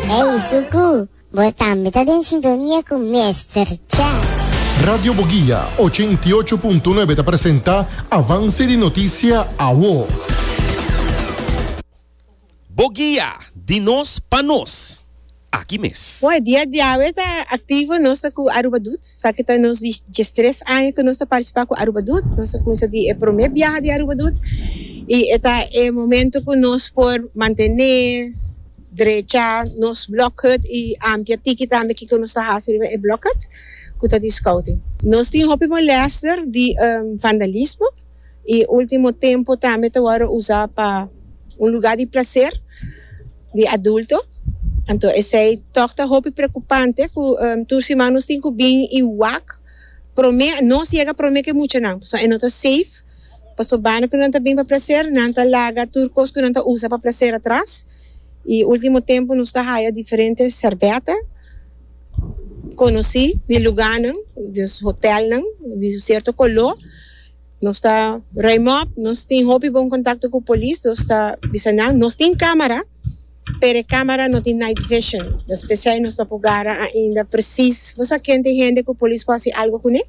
Ey Suku, bo tambe ta den sintonia cu Mester Cha. Radio Boguia ochenta i ocho punto nuebe ta presenta Avance di Noticia Awo. Boguia, di nos pa nos. Aki mes. Bo e dia diawe ta activo nos ta cu Aruba Doet. Sa ki ta nos diestres aña cu nos ta participa cu Aruba Doet. Nos a cuminsa di e prome biaha di Aruba Doet. I e ta e momento ku nos por mantené drecha nos block hut i ampia tiki tambe kiko nos ta hasi riba e block hut ku ta di scouting. Nos tin hopi molester di vandalismo i ultimo tempo tambe ta wòrdu usa pa un lugar di plaser di adulto anto esei tòg ta hopi prekupante ku tur siman nos tin ku bin i wak promé nos yega promé ke muchanan pasobra e no ta safe. Paso banda cu nan ta bin pa placer, nan ta laga tur cos cu nan ta usa pa placer atras. Y ultimo tempo nos ta haya diferente serbeta conoci di luganan, di hotelnan di cierto color. Nos ta ruim op, nos tin hopi bon contacto cu polis, nos ta bisa nan, nos tin camara. Pero e camera no tin night vision, dus p'esey nos no por gara ainda precies bo sa ken t'e hende cu polis por haci algo cun e,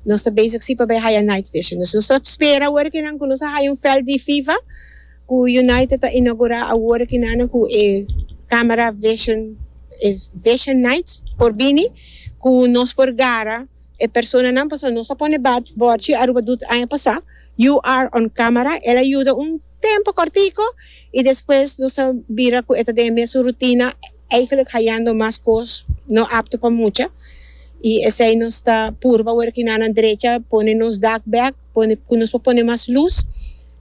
nos ta bezig si pa bay haya night vision, dus nos ta spera awor kinan cu nos a haya un veld di fifa cu United ta inaugura awor kinan cu e camera vision, e vision night por bini cu nos por gara e personanan, pasobra nos a pone bord chi Aruba doet aña pasa you are on camera, el a yuda un. tempo cortico y despues nos ta bira cu e ta den e mesun rutina eigenlijk hayando mas cos no apto pa mucha y esey nos ta purba word ki nanan drecha pone nos dak bek pone cu nos por pone mas luz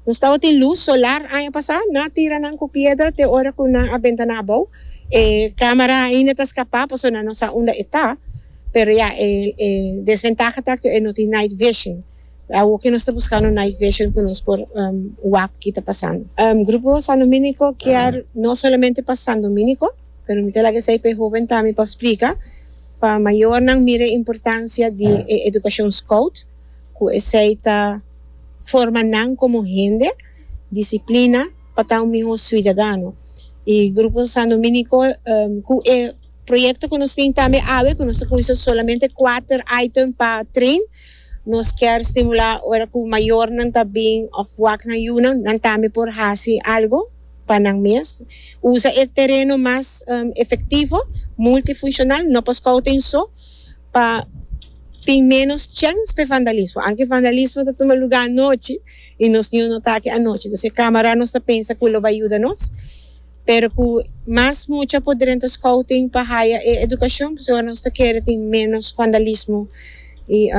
nos tawo tin luz solar aña pasa nan a tira nan cu piedra te ora cu nan a bentana abou e camera ainda ta scapa pasobra nan no sa unda e ta pero ya e desventaha ta cu e no tin night vision. Awo ke nos ta buskando night vision ku nos por wak kita pasando. Grupo San Dominiko kier no solamente pa San Dominiko pero mi ta laga esei pa e hoben tambe pa splika pa mayornan mira e importansia di e edukashon skout ku esei ta forma nan komo hende disiplina pa ta un mihó suidadano i Grupo San Dominiko ku e. Proyecto cu nos tin tambe awe cu nos ta cuinsa solamente cuater item pa train nos kier stimula ora cu mayornan ta bin of wak nan yunan nan tambe por haci algo pa nan mes usa e tereno mas efectivo multifuncional no pa scouting so pa tin menos chens pa e vandalismo aunke vandalismo ta tuma lugar anochi y nos niu no ta aki anochi entonces e camera nos ta pensa cu lo bay yuda nos. Pero cu mas mucha por drenta scouting pa haya e educacion pasobra nos ta kere tin menos vandalismo y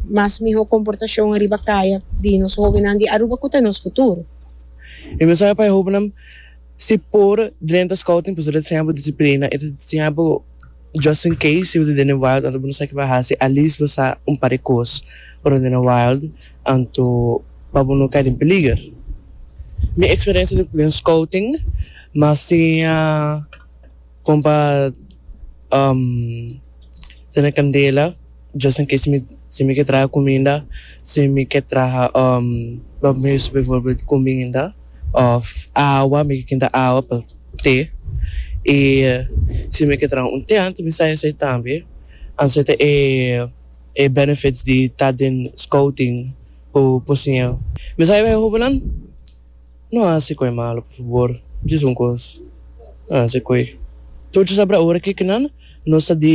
mas miho comportacion ariba caya di nos hobennan di Aruba cu ta nos futuro. Mi mensahe pa e hobennan si por drenta scouting pasobra ta siña bo disciplina y ta siña bo. Just in case si bo ta den e wild anto bo no sa kiba hasi alis bo sa un par e kos pa no den e wild anto pa bo no kai den peliger. Mi experiencia den scouting mas siña con pa tsene candela. Djos tin kei si mi ke traha kuminda, si mi ke traha pa mi usa bivorbelt kuminda òf awa, mi ke kinta awa pa te. I si mi ke traha un tent, mi sa esei tambe. Anto ta e benefits di ta den scouting ku por siña. Mi sa e hobennan, no hasi koe malu por fabor, djis un kos, no hasi koe. Tur djos a bira ora ke kinan nos ta di.